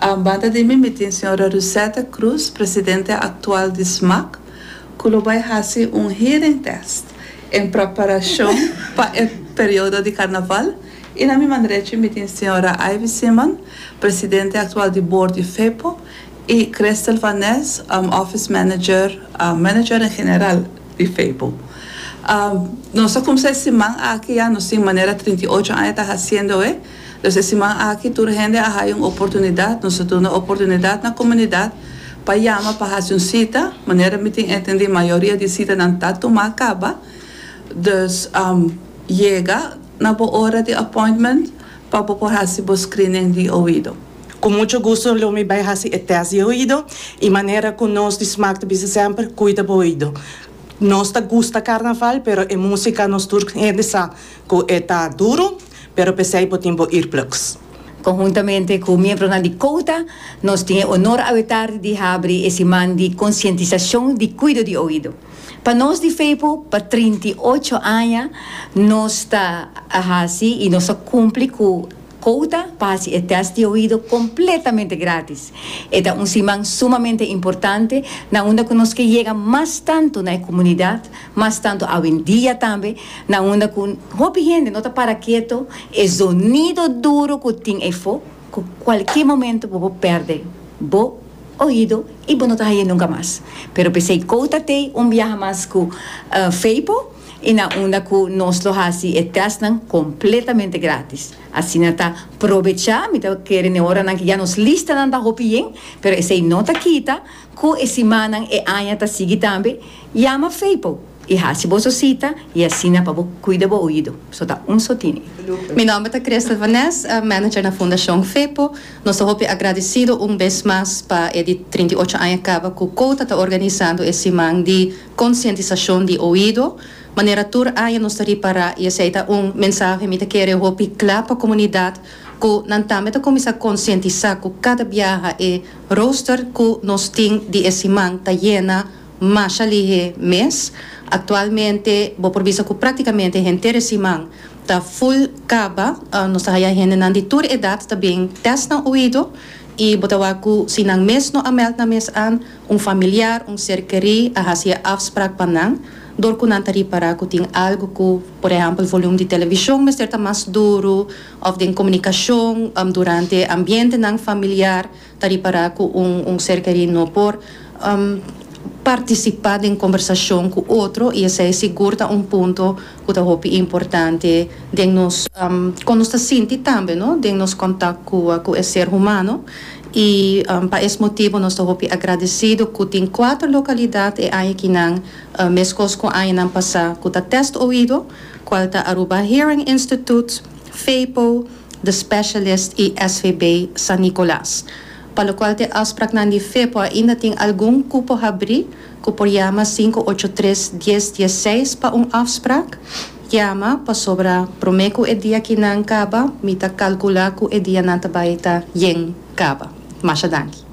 A banda di mi, mi tin señora Rusette Cruz, presidente actual di SMAC, cu lo bay haci un hearing test en preparacion pa e periodo di Carnaval y na mi man drechi mi tin señora Ivy Simon, presidente actual di board di FEPO y Christel van Nes, office manager, manager en general di FEPO. Nos a cumsa e siman aki ya, nos tin manera trinta y ocho aña ta haciendoe. Los e siman aki tur hende a haya un oportunidat, nos a duna oportunidat na comunidad pa yama pa haci un cita, manera mi tin entendi mayoria di citanan ta tuma caba, dus yega na bo ora di appointment pa bo por haci bo screening di oido. Cu mucho gusto lo mi bay haci e test di oido y manera cu nos di smaak ta bisa semper, cuida bo oido. Nos ta gusta carnaval pero e musica nos tur hende sa cu e ta duro. Pero p'esei bo tin bo earplugs. Konhuntamente ku miembronan di Kouta, nos tin e onor awetardi di habri e siman di konsientisashon di kuido di oido. Pa nos di Fepo, pa trinta i ocho aña nos ta a hasi i nos ta kumpli ku Kouta pa hasi e tèst di oido kompletamente gratis. E ta un siman sumamente importante na unda ku nos ke yega mas tantu na e komunidat Mas tantu awendia tambe, na unda ku hopi hende no ta para keto, e zonido duru ku tin efo ku kualke momento bo por pèrdè bo oido i bo no ta haña nunka mas. Pero p'esei Kouta t'ei un biaha mas ku Feipo i na unda ku nos lo hasi e tèstnan kompletamente grátis. Asina ta probechá mi ta kere n'e oranan ku ya nos listanan ta hopi yen, pero esei no ta kita Ku e simannan e aña ta sigui tambe, yama Feipo i hasi boso sita i asina pa bo kuida bo oido. So ta un so tini. Mi nòmber ta Christel van Nes, manager na Fundashon Feipo. Nos ta hopi agradisido un bes mas pa e di trinta i ocho aña kaba ku Kouta ta organisando e siman di konsientisashon di oido. Manera tur aña nos ta ripará i esei ta un mensahe mi ta kere hopi kla pa komunidat ku nan tambe ta kuminsá konsientisá ku kada biaha e Rooster cu nos tin di e siman ta yena masha lihe mes. Actualmente bo por bisa cu practicamente henter e siman ta full caba. Nos ta haya hendenan di tur edad ta bin test nan oido y bo ta wak cu si nan mes no a meld nan mes an, un familiar, un ser keri a haci e afspraak pa nan door cu nan ta ripara cu tin algo cu, por ehempel, volume di television mester ta mas duru òf den komunikashon durante ambientenan familiar ta ripará ku un ser kerí no por partisipá den kombersashon ku otro i esei sigur ta un punto ku ta hopi importante den nos kon nos ta sinti tambe no den nos kontak ku e ser humano i pa es motibu nos ta hopi agradesido ku tin kuater lokalidat e aña kinan meskos ku añanan pasá ku ta test oido. cual ta Aruba Hearing Institute, Fepo, The Specialist y SVB San Nicolas, pa locual te afspraknan di Fepo ainda tin algun cupo habrí cu por yama sinku ocho tres dies dies seis pa un afsprak, yama pasobra prome cu e dia kinan caba mi ta calcula cu e dia nan ta bay ta yen caba. Masha danki.